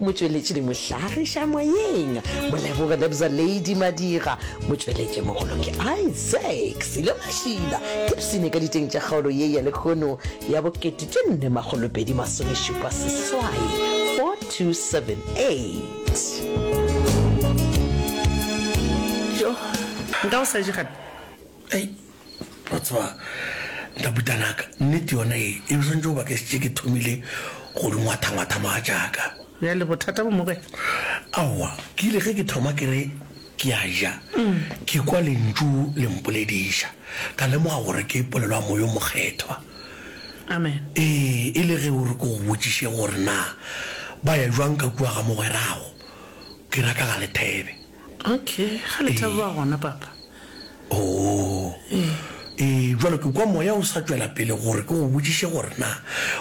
Motšweletši le mohlagiša moyeng Moleboge Lebza Lady Madira, motšweletšimogolo ke Isaac Silo Mashila, Gibson ka diteng tša kgaolo ye ya lehono ya bo 1450 seswai 4278. Yoh nka o sa je gape. ei wa tseba ntabutanaka nnete yona e e swantse o ba ke setse ke thomile go di ngwathangwatha maa jaaka bjale bothata bo moge aowa ke ile ge ke thoma ke re ke a ja mm. ke kwa lentšu le mpolediša ka lemoga gore ke polelwa moyo mokgethwa amen ee e le ge o re ko go botšiše gore na ba ya jwang ka kua ga mogwerago ke raka ga lethebe Ok, ga le thabe ba gona, Papa. Oo. Ee, bjalo ke kwa Moya o sa tšwela pele gore ke go botšiše gore na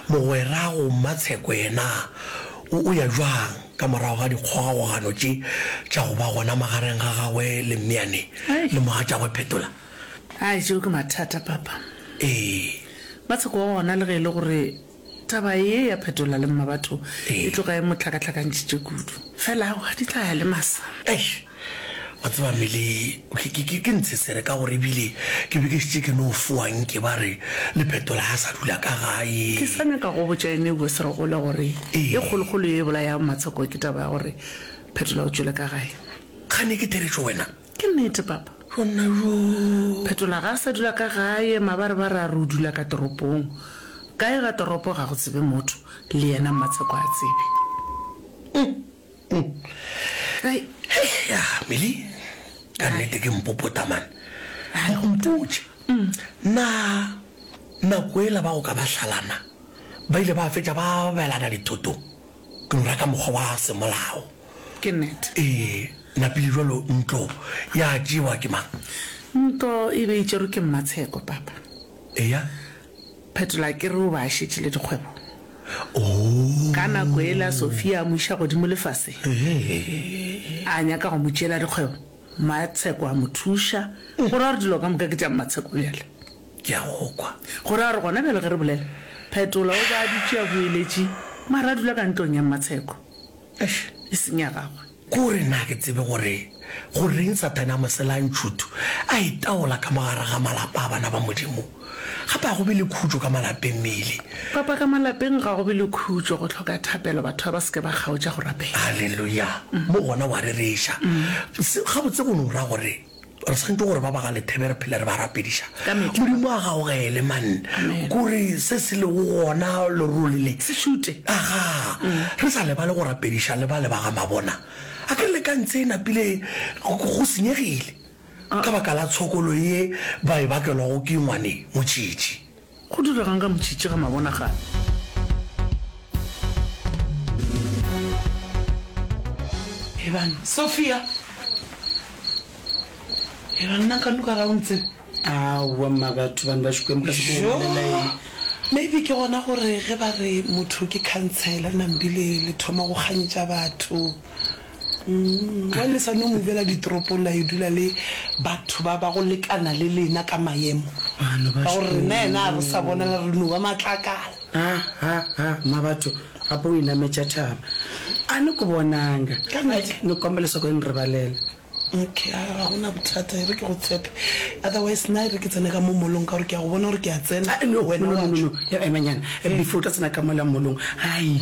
mogwerago Mmatsheko yena o, o ya bjang ka morago ga dikgogakgogano tše tša go ba gona magareng ga gagwe le Mmeane Ai. le mogatšagwe Phetola. Ai, tšeo ke mathata, Papa. Ee. Mmatsheko wa gona le ge e le gore. Taba ye ya phetola le mmabatho e tlo ka e mo hlakahlakantšhitše kudu. Fela aowa, di tla ya le masa. Eish! Wa tseba Meli, ke, ke, ke, ke ntshe sere ka gore ebile ke be ke šetše ke no fowa nke ba re le phetola ha a sa dula ka gae. Ke sa nyaka go botša ene Hugo Serogola gore ye kgolokgolo ye e bolayago Matshoko ke taba ya gore phetola o tšwele ka gae. Kgane ke theretšo wena? Ke nnete, papa. Gomme go. Phetola ga a sa dula ka gae, mabarebare a re o dula ka toropong. Kae ga toropo ga go tsebe motho, le yena Mmatsheko a tsebe. Hei, hei, ya ga Milly, ka nnete ke mpopota man. Hai, go mpotše. Na nako ela ba go ka ba hlalana ba ile ba fetša ba abelana dithotong? tlora ka mokgwa wa semolao. Ke nnete. Ee, napile jalo ntlo ya tšewa ke mang? Ntlo e be e tšerwe ke Mmatsheko, papa. Eya. Phetola ke re o be a šetše le dikgwebo. Oo. Ka nako yela Sophia a mo iša godimo lefaseng. Ee. A nyaka go mo tšeela dikgwebo, Mmatsheko a mo thuša, go ra gore dilo ka moka ke tša Mmatsheko bjale. Ke a go kwa. Go ra gore gona bjalo ge re bolela, Phetola o be a dutše a boeletše, mara a dula ka ntlong ya Mmatsheko. Eish, e seng ya gagwe. Ke go re na ke tsebe gore goreng Sathane a mo sela a ntšhuthu, a itaola ka mo gare ga malapa a bana ba Modimo? Gape ga go be le khutšo ka malapeng, Milly. Papa, ka malapeng ga go be le khutšo. Go hloka thapelo, batho ga ba se ke ba kgaotša go rapela. Haleluya! Mo gona wa rereša. Se, gabotse go no ra gore Re swantšwe gore ba ba ga lethebe re phele re ba rapediša. Ka mehla. Modimo a gaogele, man. Amen. Kore se se lego gona lerole le. Se šute. Aga. Re sa lebale go rapediša le ba le ba ga mabona. A ke re le ka ntse e napile go go senyegile ka baka la tshokolo ye ba e bakelwago ke ngwane motšitši. Go diregang ka motšhitšhi ga mabonagane? Ebang Sophia, ebang nna ka nuka ga o ntsebe. Aowa mma batho bane ba šukweng ba se go bolela eng? Maybe ke gona gore ge ba re motho ke khansela nambile le thoma go kgantša batho. Umm, wa lesane o movela ditoropong la yo dula le batho ba ba go lekana le lena ka maemo. Bana ba Ka gore rena yena a re sa bonala re no ba matlakala. Ha, ha, ha, mma batho, gape o inametša thaba. A ni ku bonanga. Ka nnete? Ni kombela leswaku i ni rivalela. Okay, a ga gona bothata, e re ke go tshepe. Otherwise, na e re ke tsene ka mo molong ka gore ke a go bona gore ke a tsena, Ah, no, no, wena no, wa no, no, tšwa. no. Emanyana, before o tla tsena ka mola molong, hai.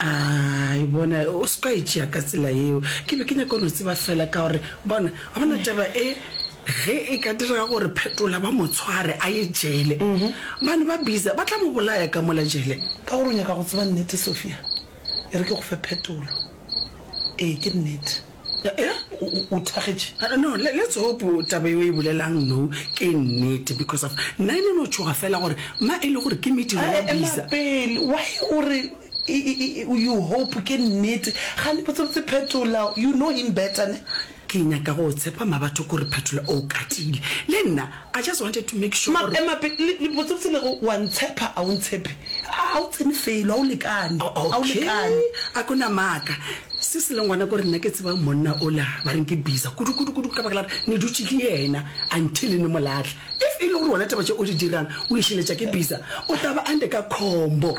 A e bona, o se ka e tšea ka tsela yeo. Ke be ke nyaka no tseba fela ka gore, bona, wa bona taba e, ge e ka direga gore Phetola ba mo tshware a ye jele, mane ba Biza ba tla mo bolaya ka mola jele. Ka gore o nyaka go tseba nnete, Sophia, e re ke go fe phetolo. Ee, ke nnete. Eeh o thagetše? No let's hope taba yeo e bolelang no ke nnete because of nna e ne no tšhoga fela gore ma e le gore ke mediro ya bisa. Ema pele why o re you hope ke nnete gane botsebotse Phetola you know him better ne? Ke nyaka go tshepa ma batho ko re Phetola o katile le nna. I just wanted to make sure gore. Ema pele, le, le, botsebotse le go, wa ntshepha, a o ntshephe? A, a o tsene felo, a o lekane, a o Okay, lekane. a ko na maaka. Se se leng gona ke gore nna ke tseba monna ola, ba reng ke biza kudu, kudu, kudu, ka baka la gore ne dutše ke yena until ne mo lahla. If e le gore wena taba tše o di dirang o e šiletša ke biza, o tla ba under ka khombo.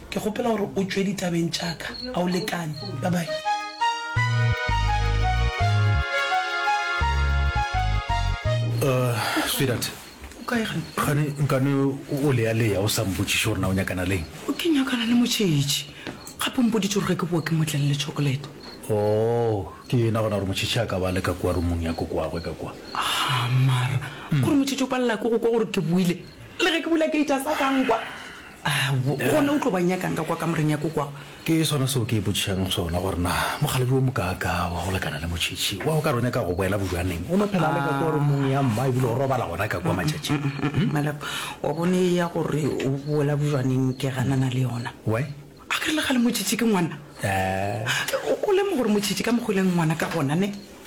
Ke kgopela gore o tšwe ditabeng tša ka. A o lekane? Bye-bye. Sweetheart. O kae kgane? Kgane nkane o leya-leya o sa mpotšiše gore na o nyakana le eng? Ke nyakana le motšhetši. Gape o mpoditše gore ge ke bowa ke mo tlelele tšhokolete. Oh, ke yena gona gore motšhetši a ka ba a le ka kua rumong ya kokowagwe ka kua. Haa, mara, gore motšhetši o palela ke go kwa gore ke boile le ge ke bula gate a sa ka nkwa? A gona o tlo ba nyakang ka kwa kamoreng ya kokwagwe? Ke sona seo ke ipotšišang sona gore na mokgalabje wo mokaakaa wa go lekana le motšhetši wa go ka re o nyaka go boela bojwaneng o no phela le ka kwa romong ya mma ebile o robala gona ka kwa matšatšing. Malapa, wa bone ya gore o boela bojwaneng ke ganana le yona. Why? A ke re le kgale motšhetši ke ngwana? O lemoga gore motšhetši ka mokgwa o e leng ngwana ka gona ne?